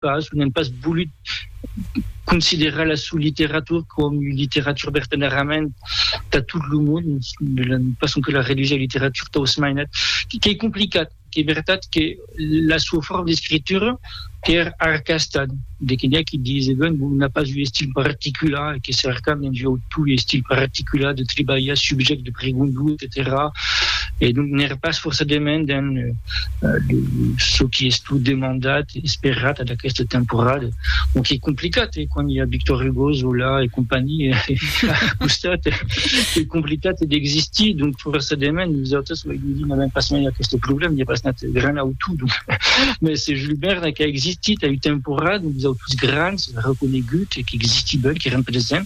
pas o n'èm pas volut considerar la sua literatura coma ua literatura vertadièrament tà tot lo mond, pas sonque la redusir a literatura tà os mainats, qu'ei complicat, qu'ei vertat que la sua forma d'escritura qu'èra arcasta, de que n'i a qui diseven bon n'a pas un estil particular e que cercam dens ua autor un estil particular de tribalhar subjècte, pregunta, etcetèra e donc n'ère pas forçadament dins çò qui estut demandat e esperat ad aquesta temporada, o qu'ei complicat e quand i a Victor Hugo, Zola e companhia a costat ei complicat d'existir, donc forçadament nosautres lo Julie n'avèm pas mai aqueste problèma, i a pas nat gran autor, donc mès se Jules Verne qu'a existit a ua temporada, nosautres grans reconeguts e qu'existibèm, qu'èrem presents.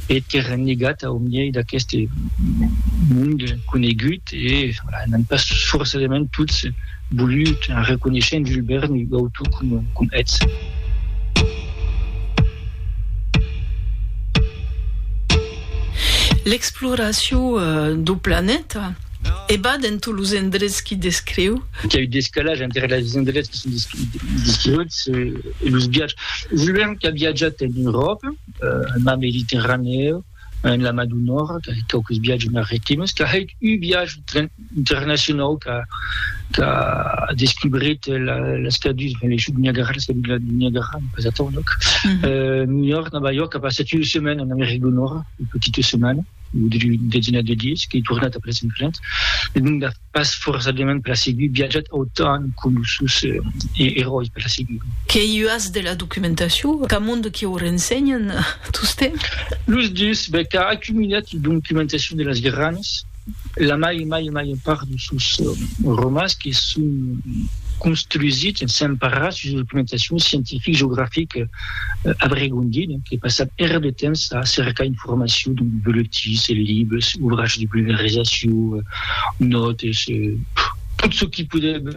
e t'es rennegat au miei d'aqueste mond conegut e n'an pas forcedament tots volut arreconéisher en Jules Verne ua autor com eths. L'exploracion dau planeta e va dens tots los endrets qui descriu. Qu'i a eu descalage entre les endrets qui son descriuts e los viatges. Jules Verne qu'a viatjat en Euròpa. en mar Mediterranèu, en la Mar du Nòrd, qu'ai hèt quauques viatges maritimes, qu'a hèt un viatge internacionau qu'a descubrit las cadus, enfin les chutes du Niagara, las cadus du Niagara, pas atau, donc, New York, Nòva York, a passat una setmana en America du Nòrd, una petita setmana, una desenat de dies, qu'ei tornat après en França, e donc pas forçadament per la seguir, viatjat autant que los sos eròis per la seguir. Qu'i uas de la documentacion qu'amond que o rensenhan tostemp? Los dus, ben, qu'a acumilat la documentacion de las granas, la mai, mai, mai part de sos romans que son construsits, s'emparat sus la documentacion scientific, geografic, Abregondi, non, que passat èra de temps a cercar informacion dins boletins, libres, ouvrages de vulgarizacion, nòtes, tot çò qui podèm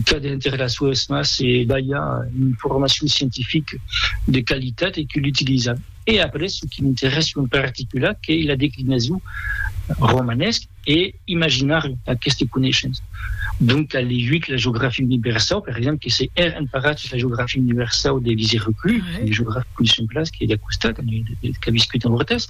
cader enter las sues mans e balhar una informacion scientifica de qualitat e que l'utilizam. E après, çò qui m'interèssa en particular qu'ei la declinason romanèsca, e imaginar aqueste coneishens. Donc qu'a leiut la geografia universau, per exemple, que se hè emparatz la geografia universau de Lise Reclus, un geograf que coneishem plan, qu'ei d'a costat, qu'a viscut en Hortès,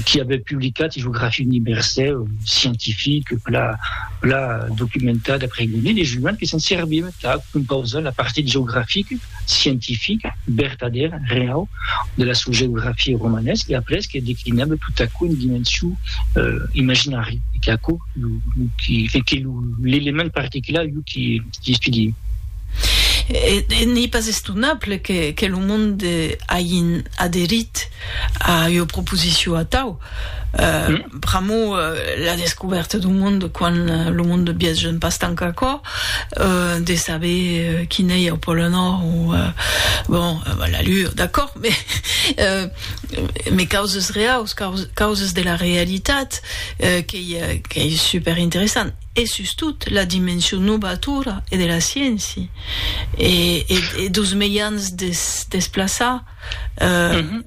qui avè publicat ua geografia universau scientifique plan plan documentada, pregonée, e juant que se'n serviu tà compausar la partit geografica. scientific, vertadèr, reau, de la sua geografia romanés e après qu'es declinable tot aquò en dimension imaginari e qu'es aquò que que l'element particular iu qui estudie. E n'ei pas estonable que que lo monde ain aderit A ua proposicion atau, pr'amor la descubèrta dau monde, quan lo monde biasgen pas tant qu'aquò, de saber qui n'ei au pòle Nòrd o bon, la Lua, d'acòrd, me me causes reaus, causes de la realitat, qu'ei qu'ei superinteressant, e sustot la dimension nobatora e de la sciéncia e e e deus mejans de se desplaçar.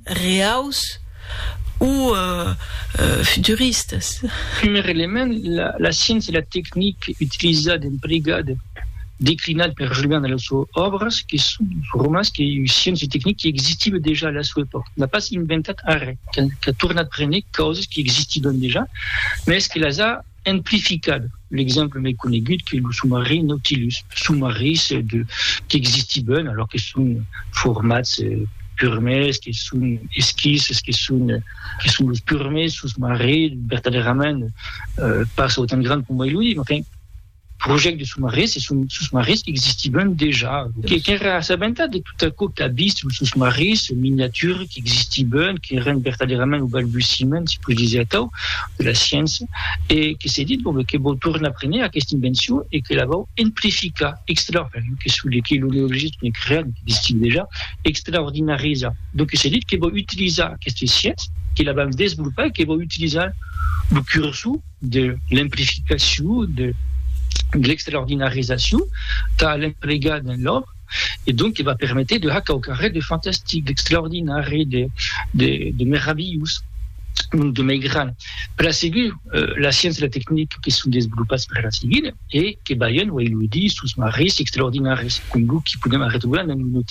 reaus o futuristas. Primièr element, la sciéncia e la tecnic utilizada, emplegada, declinada per Julian a las suas òbras, que son formas que sciéncia e tecnic que existivan dejà a la sua epòca. N'a pas inventat arrè, qu'a tornat prene causas que existivan dejà, mès que las a Amplificat, l'exemple mai conegut qu'es lo somarin Nautilus, somarins qu'existiben alòr que son formats purmèrs, que son esquisses, que son los purmèrs sosmarins vertadèrament pas autant grands coma lo diem, enfin, projèct de sosmarins e son sosmarins qu'existivan dejà, que qu'èra assabentat de tot aquò qu'a vist son sosmarins, son miniatura qu'existivan, qu'èran vertadèrament au balbutiment, si pus disèr atau, de la sciença, e que s'est dit, bon, ben, que vòu tornar prene aquesta invencion e que la vòu emplificar, extra, per jo que sou de qui lo neologis qu'en creat e qu'existic dejà, extraordinarizar. Donc s'est dit que vòu utilizar aquesta sciença, que la vam desvolopar e que vòu utilizar lo cursor, de l'emplificacion, de l'extraordinarizacion tà l'emplegar dins l'òbra, e donc que va permeter de har quauquarren de fantastic, d'extraordinari, de meravilhós, donc de meigrant per la segur. La sciéncia e la tecnica que son desvolopats per la seguir e que balhen, uèi lo dís, sos marrís extraordinaris, com lo que podèm arretrobar dins lo noti.